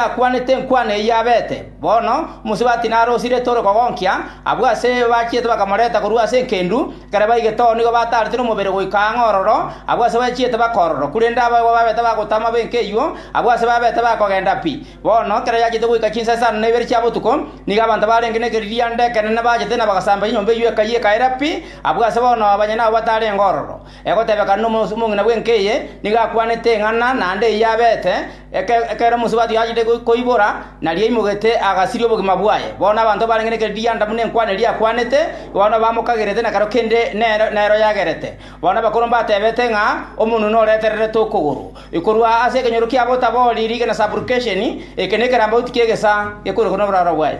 akwanete enkwana eyio abete. Bono omosubati nare osirete ore kogonkia, abwo ase bachiete bakamorenta korwa ase engendu, ekero baigete oo nigo bataarete nomobere goika ang'e ororo, abwo ase bachiete bakororwa, korende abagima babete bagotama b'enka eyio, abwo ase babete bakogenda pi. Bono ekero yachiete goika chinsa isano na ibere chia botuko, nigo abanto barenge nekeririanda ekenene bachete na bagasamba chinyomba eyio ekayia ekaera pi, abwo ase bono abanyene abo batarenge ororo. Egotebekana nomorusi omong'ina bw'enka eye nigo akwanete eng'ana naende eyio abeete, ekero omorusi o Bathio achete koibora, nario aimogete agasiria obogima bwaye. Bono abanto barenge ne keredi gi'Adamu nenkwana eria akwanete, bono bamokagerete na ekero kende nero yagerete. Bono abakoro mbatebete ng'a omonwe noretererete okogoro. Korwa ase ekenyoro kiabo otabori rigena supplication, eke nekerambauti ki'egesa gekoirokwa noboraro bwaye.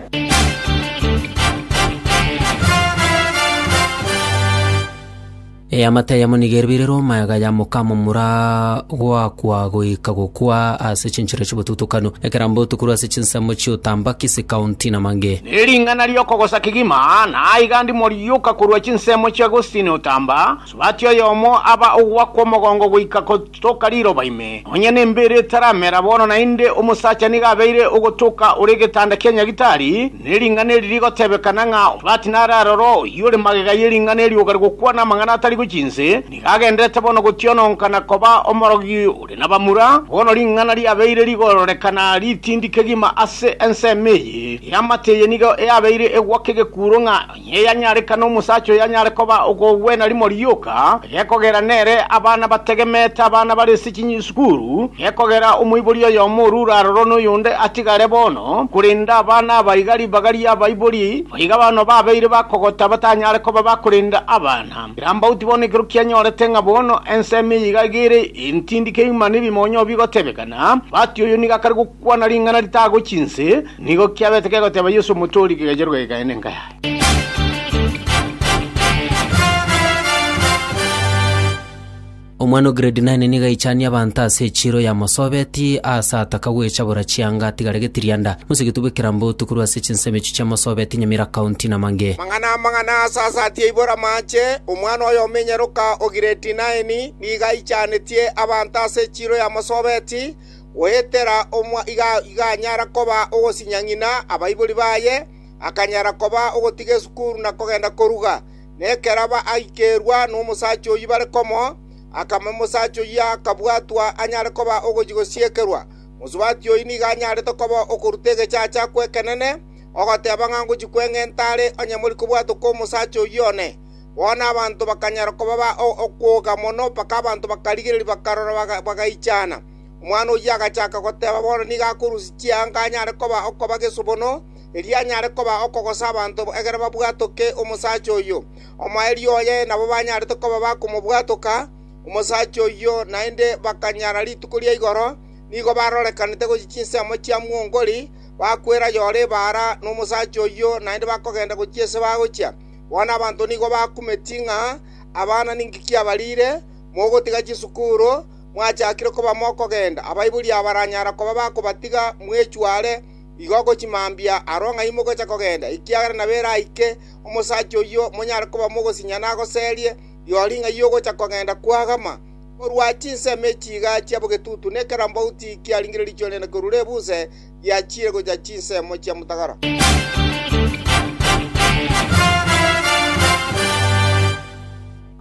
Eamate eyemo nigo eribirirwe omaega ya mokamomura goakwa goika gokwa ase chinchera chi'obotutukanu, ekerambe otukurwe ase chinsemo chi'otambaki, sikaunti, na mange. Ne ring'ana ri'okogosa kegima, na aiga ndimo rioka korwa chinsemo chia Agostini otamba, Subati oyomo aba ogoakwa omogongo goika Toka riroba ime, nonya n'embeera etaramera bono naende omosacha nigo abeire ogotoka ore egetanda kia nyagitari, ne ring'ana eri rigotebekana ng'a omobati nararore oyio ore magega ye ring'ana erioka rigokwana amang'ana atari gochia inse, nigo agenderete bono gotiononka na koba omorogi ore nabamura, bono ring'ana riabeire rigororekana ritindi kegima ase ensemo eye y'amate eye nigo eabeire egwaka egekuuro ng'a Niye yanyarekana omosacha oyanyare koba okogwena rimo rioka, gekogera nere abana bategemeete abana barese chinyisukuru, gekogera omoibori oyomo orure aroro noyonde atigare bono, korende abana aba iga ribaga ri'abaibori boiga bono babeire bakogota batanyare koba bakorenda abana. Kirambauti bono ekero kianyorete ng'a bono ensemo eye iga egere entindi keuma nebimonyo bigotebekana, bati oyo nigo akare gokwana ring'ana ritagochi inse, Nigo kiabete kegoteba Yeso omote o rigega ria rogega aye nenka yaye. Omwana o grade nine nigo aichanie abanto ase echiiro yamosobetie, aase ataka gwecha bora chianga atigare getirianda. Mosigiti bw'ekerambe otu korwa ase chinsemo echio chiamosobetie Nyamira County na mang'e. Amang'ana amang'ana asasatie aibore amache, omwana oye omenyeroka o grade nine nigo aichanetie abanto ase echiiro yamosobetie, Goetera omwana iganyara koba ogosinya ng'ina abaibori baye, akanyara koba ogotiga esukuru na kogenda koruga. Na ekero baikerwa nomosacha oyio bare komo, akame omosacha oyio akabwatwa anyare koba ogochia gosiekerwa. Mosubati oyio nigo anyarete koba okoruta egechacha gw'ekenene, ogoteba ng'a ngochia kweng'enta are onye mori kobwatwa kw'omosacha oyio one. Bono abanto bakanyara koba ba okwoga mono, mpaka abanto bakarigereria bakarora bagaichana. Omwana oyio agachaka goteba bono nigo akorusia chianga anyare koba okoba gesubono, erio anyare koba okogosa abanto egere babwatoke omosacha oyio. Omoerio oye nabo banyarete koba bakomobwatoka omosacha oyio, naende bakanyara rituko ria igoro nigo barorekanete gochia chinsemo chia mwongori, bakwera yore ebaara nomosacha oyio, naende bakogenda gochia ase bagochia. Bono abanto nigo bakumetie ng'a abana ninki kiabariire, mogotiga chisukuru, mwachakire koba mokogenda. Abaibori abaranyara koba bakobatiga mwechware igo gochimambia aro ng'a imogocha kogenda, ekiagera nabo eraike omosacha oyio monyare koba mogosinya nagoserie rirorio ng'a yogocha kogenda kwagama. Korwa chinsemo echi iga chia bogetutu nekerambaoti kiaringire riichori riane korwa Rebuse, giachiire gochia chinsemo chia motagara.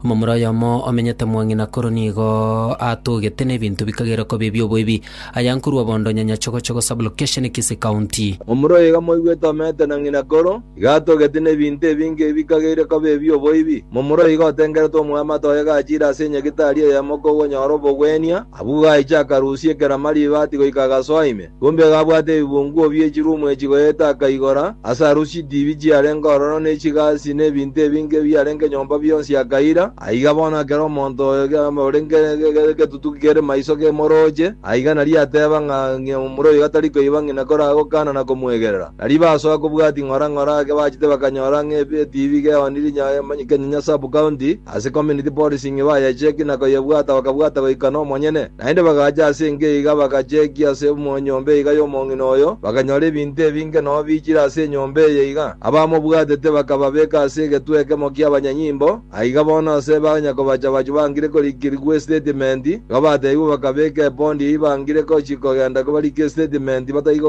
Omomura oyomo omenyete mwang'ina koro nigo atogete na ebinto bikagerwa koba ebi'oboibi, aya nkorwa bondo Nyanyachogochogo Sub-location Kisii County. Omura oyo iga moigwete omenyete na ng'ina koro. Igatogeti nebinto ebinge ebi kageire koba ebi'oboibi. Momura oiga otengeretwe omwamate oye gachire ase enyegitari eyemo kogonyora obogwenia, abwo gaiche akarusia ekerama ribati goika agasoa ime. Kumbe iga abwate ebibunguo bi'echirumu echi goeta akaigora, ase arusia idibi chiarenge ororo ne chigasi ne ebinto ebinge ebiarenge nyomba bionsi akaira. Aiga bono ekero omonto oyo ore ngetutuki kere maiso kemorooche, aiga nario ateeba ng'a ng'ina momura oyo gatari koiba ng'ina koraa gokaana na komwegerera. Nario basoa kobwati ng'ora ng'ora ake bachete bakanyora ng'a etibi geoniri nya Kenya nya sub county ase community policing bayecheki na koyebwata bakabwata goika nomonyene. Naende bagacha ase enka iga bagacheki ase enyomba iga yomong'ina oyo bakanyora ebinto ebinge nobichire ase enyomba eye iga abamobwatete bakababeka ase egetwe ekemo kiabanyanyimbo Aiga bono ase banya kobacha abachie bangire korikirigwa estatimenti, igo bateebigwe bakabeka epondi eyio bangire gochia kogenda kobarike estatimenti bataigokenda.